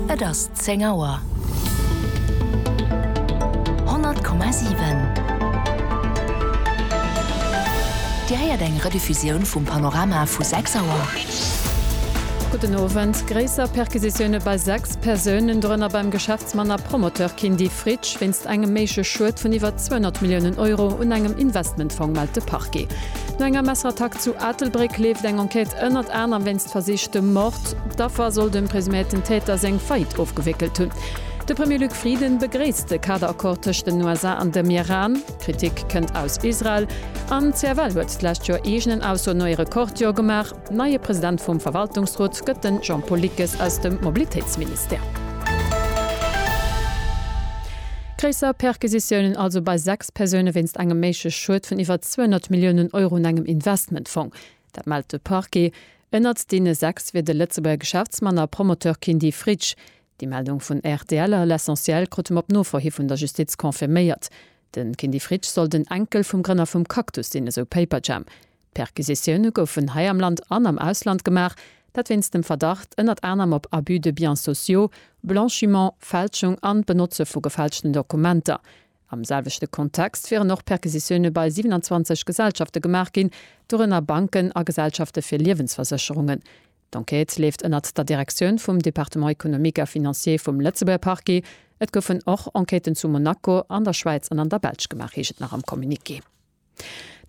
Et ass zéng Auer. 100,7 Dir héiert eng Rediffusioun vum Panorama vu 6 Auer. Gudden Owend. Gréisser Perquisitioune bei 6 Persounen, dorënner beim Geschäftsmann a Promoteur Kindy Fritsch, wéinst engem méigleche Schued vun iwwer 200 Milliounen Euro un engem Investmentfong, mellt de Parquet. No enger Messerattack zu Aatelbréck leeft eng Enquête ënnert anerem wéinst versichtem Mord. D'Affer soll dem presuméierten Täter seng Faillite ofgewéckelt hunn. De Premier Luc Frieden begréisst de Kaderaccord tëscht den USA an dem Iran. Kritik kënnt aus Israel. An d'CFL huet d'lescht Joer eegenen Aussoen no ee Rekordjoer gemaach. Neie President vum Verwaltungsrot gëtt den Jean-Paul Lickes aus dem Mobilitéitsministère. Gréisser Perquisitiounen also bei 6. Persoune wéinst engem méigleche Schued vun iwwer 200 Milliounen Euro un engem Investmentfong. Dat mellt de Parquet. Ënnert deene sechs wier de Lëtzebuerger Geschäftsmann a Promoteur Kindy Fritsch. Déi Meldung vun rtl a L'Essentiel krute mer op Nofro hi vun der Justiz confirméiert. De Kindy Fritsch soll den Enkel vum Grënner vum Cactus sinn, esou Paperjam. D'Perquisitioune goufen hei am Land an am Ausland gemaach. Dat wéinst dem Verdacht ënnert anerem op Abus de biens sociaux, Blanchiment, Fälschung an d'Benotze vu gefälschten Dokumenter. Am selwechte Kontext wieren och Perquisitioune bei 27 Gesellschafte gemaach ginn, dorënner Banken a Gesellschafte fir Liewensversécherungen. D'Enquête leeft ënnert der Direktioun vum Département économique et financier vum Lëtzebuerger Parquet. Et goufen och Enquêten zu Monaco, an der Schwäiz an an der Belsch gemaach, heescht et nach am Communiqué.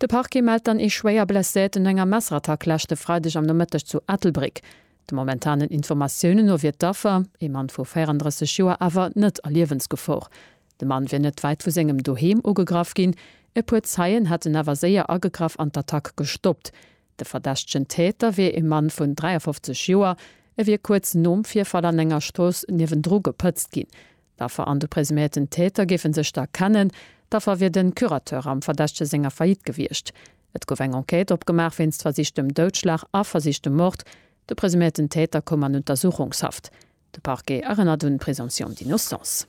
De Parquet mellt dann ee schwéier Blesséierten no enger Messerattack leschte Freideg am Nomëtteg zu Ettelbréck. De momentanen Informatiounen no wier d'Affer, ee Mann vu 34 Joer, awer net a Liewensgefor. De Mann wier net wäit vu sengem Doheem ugegraff ginn. E puer Zeien hätten awer séier agegraff an d'Attack gestoppt. De verdächtegen Täter wier ee Mann vun 53 Joer. E wier kuerz nom Virfall an enger Strooss niewendru gepëtzt ginn. D'Affer an de presuméierten Täter géife sech da kennen. D'Affer wier de Curateur am Verdächtege senger Faillite gewiescht. Et gouf eng Enquête opgemaach wéinst versichtem Doudschlag a versichtem Mord. De presuméierten Täter koum an Untersuchungshaft. De Parquet erënnert un d'Présomption d'innocence.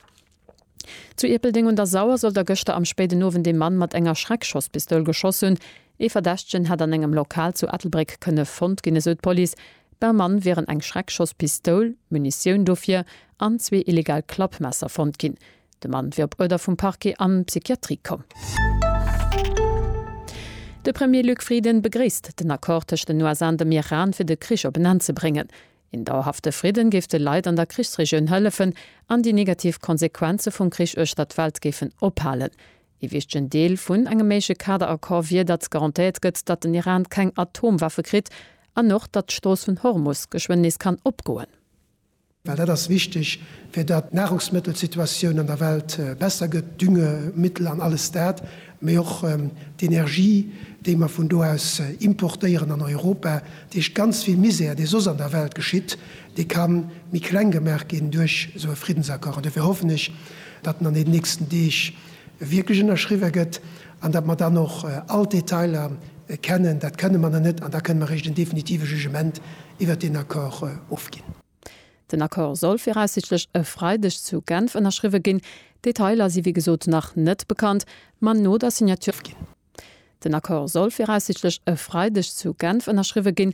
Zu Ierpeldeng un der Sauer soll da gëschter am spéiden Owend ee Mann mat enger Schreckschosspistoul geschoss hunn. Ee Verdächtegen hätt an engem Lokal zu Ettelbréck kënne fonnt ginn, esou d'Police. Beim Mann wieren eng Schreckschosspistoul, Munitioun dofir an zwee illegal Klappmesser fonnt ginn. De Mann wier op Uerder vum Parquet an d'Psychiatrie komm. De Premier Luc Frieden begréisst den Accord tëscht den USA an dem Iran, fir de Krich op en Enn ze bréngen. Een dauerhafte Fridden géif de Leit an der Krichsregioun hëllefen an déi negativ Konsequenze vum Krich uechter d'Welt géifen ophalen. Ee wichtegen Deel vun engem méigleche Kaderaccord wier, datt garantéiert gëtt, datt den Iran keng Atomwaffe kritt an och, datt d'Strooss vun Hormus geschwënn nees kann opgoen. Well dat ass wichteg, fir datt d'Nahrungsmëttelsituatioun an der Welt besser gëtt, Düngemittel an alles dat, mee och d'Energie, déi mer vun do aus importéieren an Europa. Dat heescht, ganz vill Misär, dee soss an der Welt geschitt, Dee ka méi kleng gemaach ginn duerch esou e Friddensaccord. An dofir hoffen ech, datt en an deenen nächsten Deeg wierklech ënnerschriwwe gëtt an datt mer dann och all d'Detailer kennen. Dat kënne mer nach net an da kënne mer eréischt en definitive Jugement iwwert deen Accord ofginn. Den Accord soll viraussiichtlech e Freideg zu Genf ënnerschriwwe ginn. D'Detailer si wéi gesot nach net bekannt, ma no der Signature vum. Den Accord soll viraussiichtlech e Freideg zu Genf ënnerschriwwe ginn.